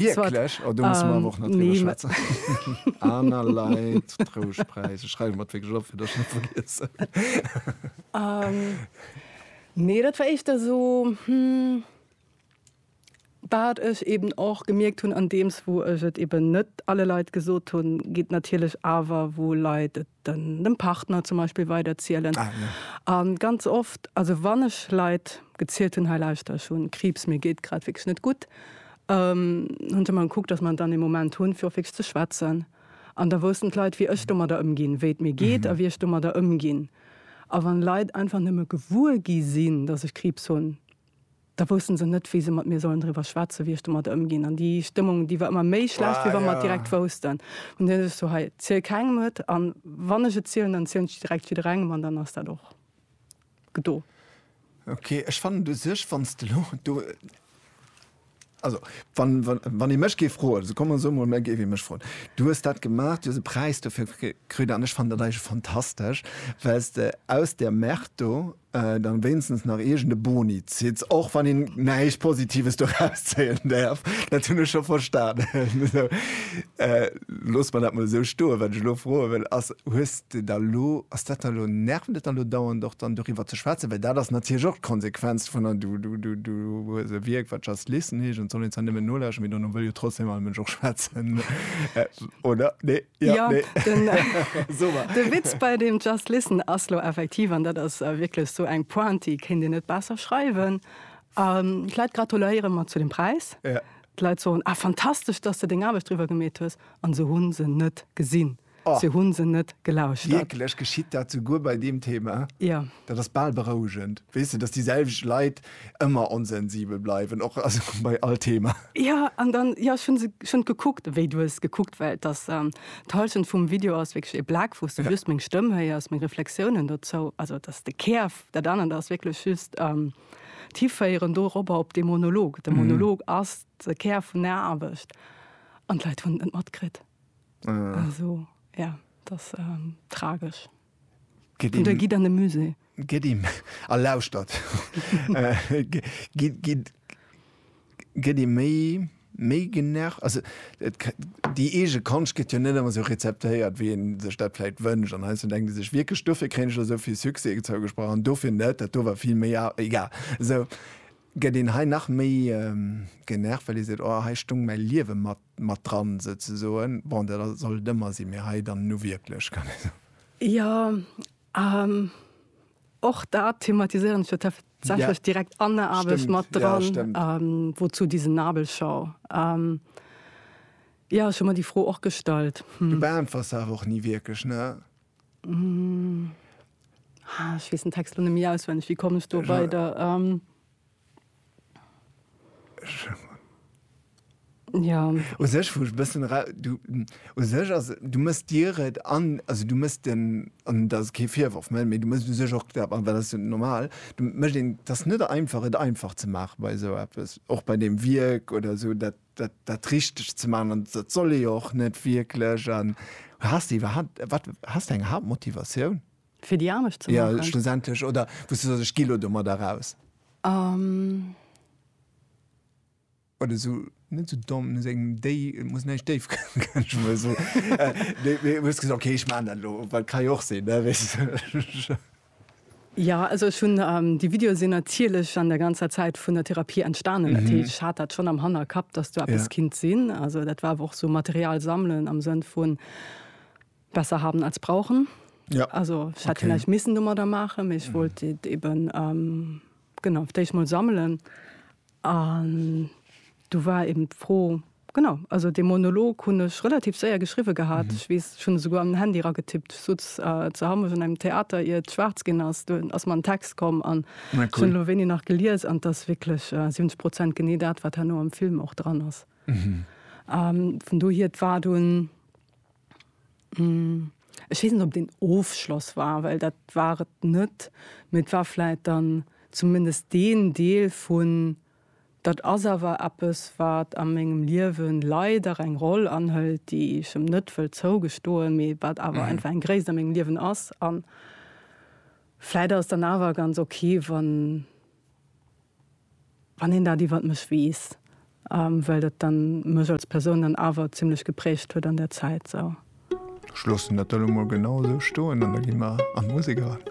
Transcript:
Wierklech? Oh do musse mer awer och nach driwwer schwätzen. Aner Leit, Trouschtpräis, ech schreiwe mer et wierklech op, fir datt ech net vergiessen. Nee, dat war éischter esou, wat ech eeben och gemierkt hunn, andeems wou ech et eeben net alle Leit gesot hunn, geet natierlech awer, wou Leit et dem Partner zum Beispill weider zielen a ganz oft, also wann ech Leit gezielt hunn, hei lauschter ech hunn Kriibs, mir geet grad wierklech net gutt, hunn se emmer gekuckt, datt mer dann ee Moment hunn, fir och wierklech ze schwätzen. An da woussten d'Leit, wéi ech domadder ëmginn, wéi et mir geet a wéi ech domadder ëmginn. A wann Leit einfach nëmme gewuer gi sinn, datt ech Kriibs hunn, Da woussten se net, wéi se mat mir sollen driwwer schwätzen, wéi ech domadder ëmginn. An déi Stëmmung, déi war ëmmer méi schlecht, wéi wa mer et direkt woussten. An dunn ech so, hei, ziel kengem et, an wann ech et zielen, dann zielen ech et direkt jidderengem, an dann ass dat och gedo. Ok, ech fannen et u sech, wann s de elo do. Also, wann, wann, wann ee mech géif froen, esou kommen esou emol, mä géif ee mech froen, du hues dat gemaach, du hues e Präis dofir kritt an ech fannen dat eigentlech fantastesch, well s de aus där Merde do dann wéinstens nach iergend e Boni zitt, och wann een näischt Positives doraus zéien däerf, dat hunn ech scho verstanen. Loosse mer dat mol esou stoen. Wat ech elo froe wëll ass, Hues de da elo, ass dat da elo, nervt et da elo dauernd och dann doriwwer ze schwätzen? Well dat ass natierlech och d'Konsequenz vun, du hues e Wierk wat Just Listen heescht an et soll een zwar nëmmen nolauschteren, mee dono wëll jo trotzdeem all Mënsch och schwätzen, oder? Nee? Jo? Jo, Nee? den, So mar. de Witz bei deem Just Listen ass elo effektiv, an dat ass wierklech esou eng Pointe, déi kéint een net besser schreiwen, a vläit gratuléiere mer zu dem Präis, Ja. D'Leit soen, Ah, fantastesch, dass de deng Aarbecht driwwer gemeet hues. An se hu se net gesinn. Oh. Se hu se net gelauschtert. Wierklech? Geschitt dat souguer bei deem Thema? Jo. Dat ass bal berouegend. Weess de, dass déi selwecht Leit ëmmer onsensibel bleiwen, och, also bei all Thema. Jo, an dann, jo, ech hu se schonn gekuckt, wéi du hues gekuckt, well dass d'Hallschent vum Video ass wierklech e Black, wou s du just meng Stëmm héiers, meng Reflexiounen dozou, also dass de Kär, dat anert ass wierklech just. d'Hiféieren doropper op dee Monolog. De Monolog ass de Kär vun der Aarbecht an d'Leit hunn et net matkritt. Also ja, et ass tragesch. An da gitt an de Musée. Gitt a lauschtert. gëtt ee méi méi genervt, also et déi eege Konscht gëtt jo net ëmmer esou rezeptéiert wéi een sech dat vläit wënscht an heiansdo denkt ee sech wierklech dofir kréien ech elo esou vill Succès zougesprach an dofir net, dat do war vill méi a egal esou gëtt een hei nach méi genervt well ee seet oh hei stung mäi Liewe mat mat dran souzesoen. Bon dat soll et ëmmer sinn, mee hei dann nu wierklech kann ee soen. Jo. An och dat thematisieren ech jo tatsächlech ja. direkt an der Aarbecht mat dran, ja, ähm, wozu diese Nabelschau. Ähm, ja, schon mal die Froh och gestallt. Hm. Du beantworts awer och nie wirklich, ne? Mm. Ah, ich wees den Text net méi auswendig, wie komme ich do weider? Ähm, Ja. U sech vu bëssen du u sech ass du mëss Dir et an also du mëss den an dat ass kee Virworf mé du mëss u sech och dat an well ass jo normal du mécht een et ass net einfach et einfach ze maache bei esou eppes och bei deem Wierk oder esou dat dat dat richteg ze maachen an dat soll ee jo och net wierklech an has de iwwerhaapt wat has de eng Haaptmotivatioun Fir déi Aarbecht ze maachen? Jo, schlussendlech. Oder wou s du soss, ech gi lo domadder raus. Um. Oder sou, net sou domm, no sengem Déi, et muss näischt déif goen, kënnt ech mer esou. Mee du hues gesot, okay, ech maachen dat elo, well ka jo och sinn, ne, wéi s. Jo, also ech hunn, déi Videoe sinn natierlech an der ganzer Zäit vun der Therapie entstanen. Dat heescht, ech hat dat schonn am Hannerkapp, dass do eppes kinnt sinn. Also dat war awer och sou Material sammelen am Sënn vun. Besser haben als brauchen. Ja. Also ich hätte okay. vielleicht missen dummer da machen, ich mhm. wollte eben ähm, genau ich mal sammeln. Und du war eben froh genau also den Monolog hun ich relativ sehr geschrieben gehabt. Mhm. Ich weiß, schon sogar am Handy getippt so äh, zu haben schon einem Theater ihr schwarz gehen hast du aus meinem Text kommen an cool. schon wenig nach geliers an das wirklich äh, 70 Prozent gene dat war nur im Film auch dran ist. Mhm. Ähm, von du hier war du ein Ech weess net, ob et een Ofschloss war, well dat war et net. Mee et war vläit dann zumindest deen Deel vun, dat ass awer eppes, wat a mengem Liewe leider eng Roll anhëlt, déi ech em net wëll zougestoen, mee wat awer einfach eng Gréisst a mengem Liewen ass. A vläit ass et dann awer ganz ok, wann. Wann een dat iwwert mech weess, well dat dann mech als Persoun dann awer zimlech geprägt huet an der Zäit sou. Ech loossen dat elo mol genau esou stoen an da gi mer an d'Musek eran.